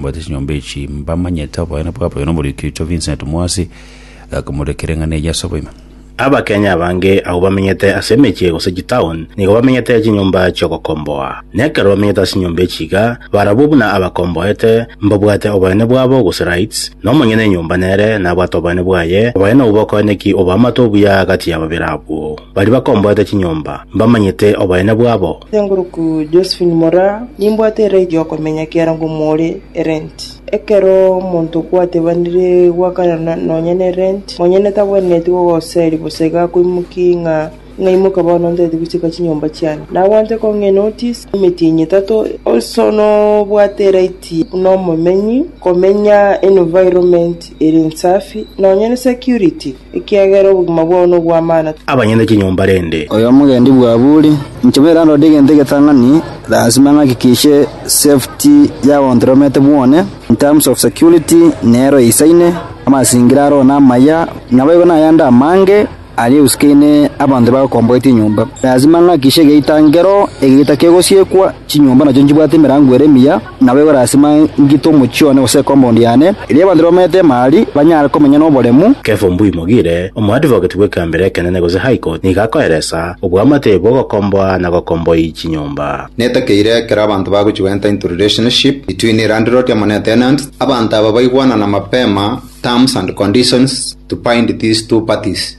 Mbwate chinyomba echi mbamanyete oboene bwabo oyo nomoriki oito Vincent Mwasi gakomorekera eng'ana eye ase oboime. Abakenya abange abwo bamenyete ase emechie gose chitown nigo bamenyete chinyomba chiogokomboa. Na ekero bamenyete ase chinyomba echi iga, barabwo buna abakomboete, mbabwate oboene bwabo gose rights, na omonyene enyomba nere nabwate oboene bwaye, abaye nobokoeneki oboamate obuya gati ya babere abwo. Baria bakomboete chinyomba, mbamanyete oboene bwabo. Seng'oroku Josephine Moraa, Nimbwate erai gi'okomenya kiaro ngomore erenti. Ekero omonto okwatebanire gwakanana nonya nerenti, monyene tabwenereti gogoseria bosa iga akoimokia ng'a ng'aimoke bono ntete gochika chinyomba chiane. Nabwate kong'e enotis emetienyi etato also nobwate eraiti buna omomenyi komenya environment ere ensafi nonya ne security. ekiagera obogima bwao nobw'amano. Abanyene chinyomba rende. Oy'omogendi bw'aburi. Inche bwere narorire egento egetang'ani, lasima ng'aki kiche safety yao on the romete bwone, in terms of security nero eisaine, amasingira aro namaya, naboigo nayande amange aria eusikaine abanto bagokomboetie enyomba. Lasima ng'akishe egeita nkero, egeita kegosiekwa, chinyomba nacho nchibwate emerango ere emiya, Naboigo lasima ngite omochie one gose ekombaundi yane, erio abanto bamanyete Emali banyare komenya noboremu. Kefa Ombui-mogire, omoadvocate bw'ekeambero ekenene gose High Court, nigo akoeresa oboamate bw'ogokomboa na gokomboi chinyomba. Netakeire ekero abanto bagochigwa entitled relationship between landlord amo ne tenant, abanto aba baigwanana mapema terms and conditions to bind these two parties.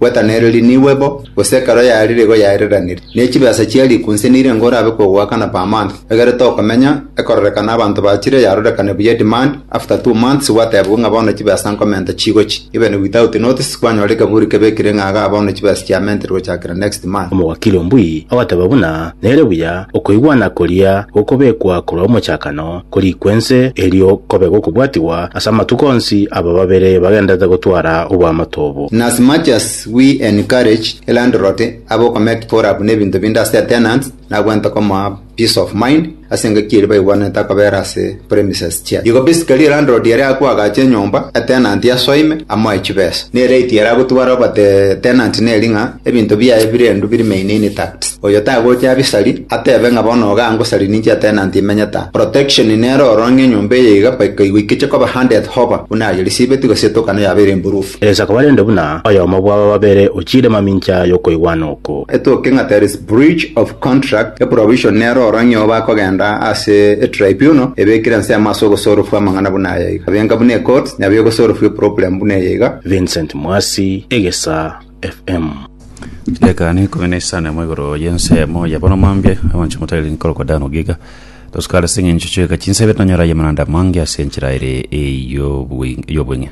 Gwetanereria niigwe bo, gose ekero yarire igo yaereraniri, ne chibesa chia riku nse nire ngo orabe kogoakana per month, egere tokomenya, ekororekana abanto bachire yarorekane buya demand, after two months gwatebigwe ng'a bono chibesa nkomenta chigochi, even without notice kwanyora ekeburi kebekire ng'a igaa bono chibesa chiamentere gochakera next month. Omowakili ombui agateba buna nere buya okoigwana koria gokobekwa korwa omochakano, korikwa ense, erio kobe gokobwatigwa ase amatuko onsi aba babere bagenderete gotwara oboamate obo. In as much as we encourage landlord abo commit for up nebinto binde ase their tenants, nagwente komoa peace of mind ase engaki eria baigwanete akobera ase premises chiaye. Igo basically landlord ere agwo agache enyomba, a tenant asoime, amoe chibesa. Ne right ere agotwara oba the tenant neri ng'a ebinto biaye bire endu birimaine intact. Oyo tagocha abisari, atebe ng'a bono iga ngosari ninche atenanti imenyete aa. Protection nere ororo ng'a enyomba eye iga mpaka igoikeche koba handed hoba, buna aye risibeti gose etokano yabeire imburufu. Eresa koba rende buna oyomo bw'aba babere ochiire mamincha y'okoigwana oko. Etoke ng'a there is breach of contract, e provision nere ororo ng'a iyao bakogenda ase e tribunal ebekire ensemo ase ogosorofwa amang'ana buna aya iga. Abenga buna e courts, nyabeo egosorofwa e problem buna eye iga. Vincent Mwasi, Egesaa. FM. Dakika ne ikumi na isano mo igoro y'ensemo ya bono mambia abanche motari nkorokwa dano giga tosukara ase eng'encho chieka chinsebe tonyora ye mananda mange ase enchera ere ey'obwe- y'obweng'e